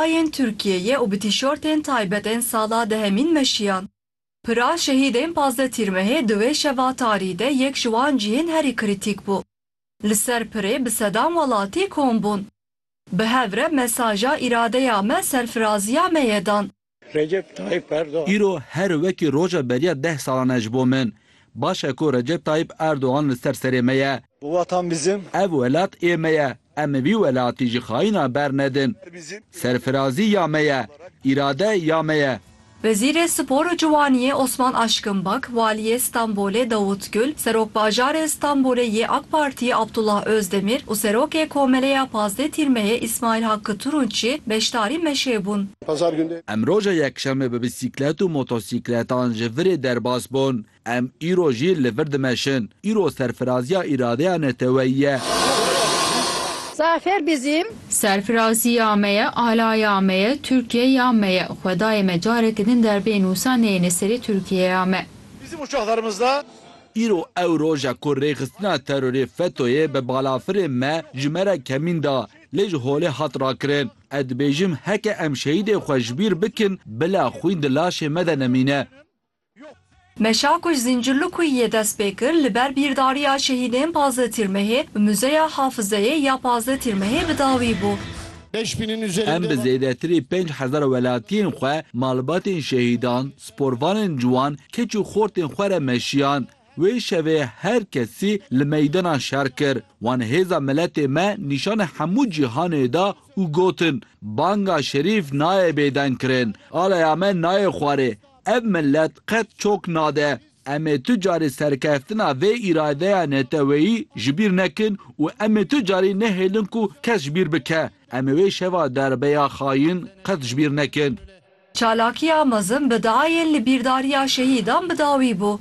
Bayên Tirkiyeyê û bi tîşortên taybet ên sala dehemîn meşiyan. Pira şehîdên pazdeh Tîrmehê di wê şeva tarî de yek ji wan cihên herî krîtîk bû. Li ser pirê bi sedan welatî kom bûn. Bi hev re mesaja îradeya me serfiraziya me ye dan. Recep Tayyip Erdogan. Îro her wekî roja beriya deh salan e ji bo min. Baş e ku Recep Tayyip Erdogan li ser serê me ye. Bu watan bizim. Ev welat ê me ye. Em vî welatî ji xayînan bernedin. Serfirazî ya me ye. Îrade ya me ye. Wezîrê Spor û Ciwaniyê Osman Aşkın Bak, Waliyê Stenbolê Davut Gül, Serokbajarê Stenbolê yê AK Partiyê Abdullah Özdemir û Serokê Komeleya Pazdeh Tîrmeyê İsmail Hakkı Turunççi beşdarî meşê bûn. Em roja Yekşemê bi bîsîklet û motosîkletan ji virê derbas bûn. Em îro jî li vir dimeşin. Îro serfiraziya îradeya neteweyî ye. Zafer bizim. Serfiraziya me ye, alaya me ye, Tirkiyeya me ye. Xwedayê me careke din derbê nûsa neyêne serê Tirkiyeya me. Bizim uçaxlarımızda. Îro ew roj e ku rêxistina terorê FETÖ'yê bi balafirên me ji me re kemîn da, lê ji holê hat rakirin. Ez dibêjim heke em şehîdên xwe ji bîr bikin bila xwîn di laşê me de nemîne. Meşa ku ji Zîncirlikuyê yê dest pê kir li ber bîrdariya şehîdên Pazdeh Tîrmehê bi Muzeya Hafizeyê ya Pazdeh Tîrmehê bi dawî bû. Em bi zêdetirî pênc hezar welatiyên xwe, malbatên şehîdan, sporvanên ciwan, keç û xortên xwe re meşiyan. Wê şevê her kesî li meydana şer kir. Wan hêza miletê me nîşanê hemû cîhanê da û gotin, Banga şerîf nayê bêdengkirin. Alaya me nayê xwarê. Ev milet qet çok nade. Em ê tu carî serkeftina vê îradeya neteweyî ji bîr nekin û em ê tu carî nehêlin ku kes ji bîr bike. Em ê wê şeva derbeya xayîn qet ji bîr nekin. Çalakiya mezin bi diayên li bîrdariya şehîdan bi dawî bû.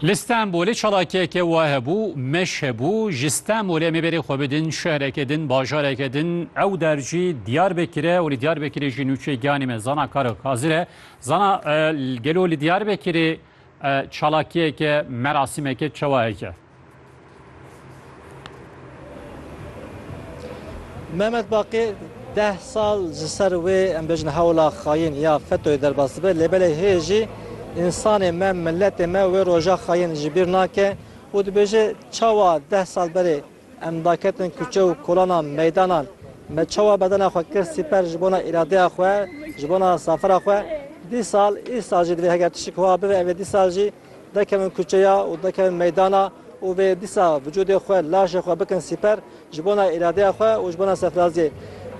Li Stenbolê çalakiyeke wa hebû, meş hebû, ji Stenbolê em ê berê xwe bidin şehreke din, bajareke din, ew der jî Diyarbekir e û li Diyarbekirê jî nûçeyê giyanê me Zana Karo Kazir e. Zana gelo li Diyarbekirê çalakiyeke, merasîmeke çawa heke? Mehmet Baqî deh sal ji ser wê em bêjin hewla xayîn ya FETÖ'yê derbas dibe lê belê hê jî însanê me, miletê me wê roja xayîn ji bîr nake û dibêje çawa deh sal berê em daketin kuçe û kolanan, meydanan me çawa bedena xwe kir sîper ji bona îradeya xwe, ji bona zafera xwe dîsal îsal jî divê heger tişik wiha bibe ev ê dîsal jî Derkevin kuçeya û derkevin meydana û vê dîsa vücudê xwe, laşê xwe bikin sîper ji bona îradeya xwe û ji bona sefraziyê.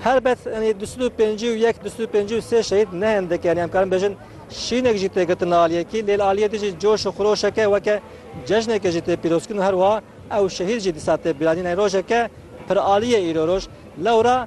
Helbet enî du sed û pêncî û yek, du sed û pêncî û sê şehîd ne hindik e, enî em karin bêjin şînek jî tê girtin li aliyê kî lê li aliyê din jî coş û xiroşeke weke cejnekê jî tê pîrozkirin û her wiha ew şehîd jî dîsa tê bîranîn. Enî rojeke piraliyê îro roj lewra.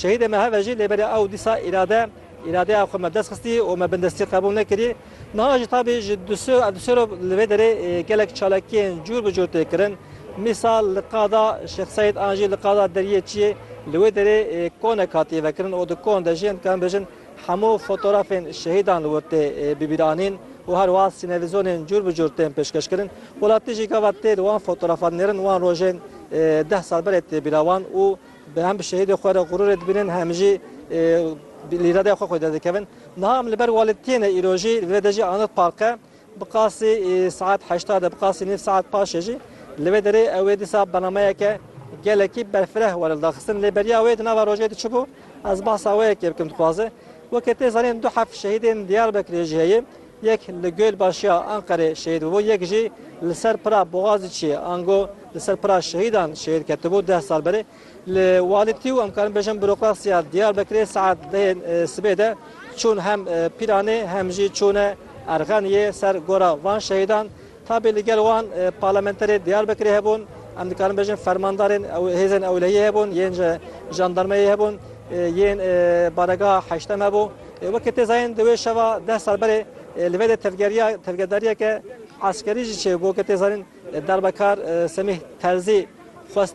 Şehîdê me hev e jî lê belê ew dîsa îrade îradeya xwe me dest xistî û me bindestî qebûl nekirî. Niha jî tabî ji dusê re li vê derê gelek çalakiyên cûr bi cûr tê kirin. Mîsal li qada Şêx Seîd an jî li qada Deriyê Çiyê li wê derê konek hatiye vekirin û di kon de jiyên dikarin bêjin, Hemû fotorafên şehîdan li wir tê bibîranîn û her wiha sînevîzonên cûr bi cûr tên pêşkeşkirin. Welatî jî gava tê li wan fotorafan nêrin wan rojên deh sal berê tê bîra wan û hem bi şehîdê xwe re xurûrê dibînin hem jî îradeya xwe xwederdikevin. Niha em li ber welêt tiyêne îro jî li vê de jî anir parqe. Bi qasî saet heşta de bi qasî nîv saet paşê jî li vê derê ew ê dîsa bernameyeke gelekî berfireh were li daxistin lê beriya wê di nava rojê de çi bû ez behsa wê yekê bikim dixwaze weke tê zanîn du heft şehîdên Diyarbekirê jî heye yek li Gölbaşiya Anqerê şehîd bûbû yek jî li ser pira Boğaziçiyê ango li ser pira şehîdan şehîd ketibû deh sal berê. Li Walitî û em karin bêjin bûrokrasiya Diyarbekirê saet duyên sibê de çûn hem Pîranê hem jî çûne Erxeniyê ser gora van şehîdan. Tabî li gel wan parlamenterê Diyarbekirê hebûn, em dikarin bêjin fermandarên hêzên ewlehiyê hebûn yên ji jandarmeyê hebûn, yên baregeha heştem hebû. Weke tê zayîn di wê şeva deh sal berê li vê de tevgeriya tevgerdariyeke eskerî jî çêbû. Weke tê zanîn Derbekar Semîh Terzî xwestibû.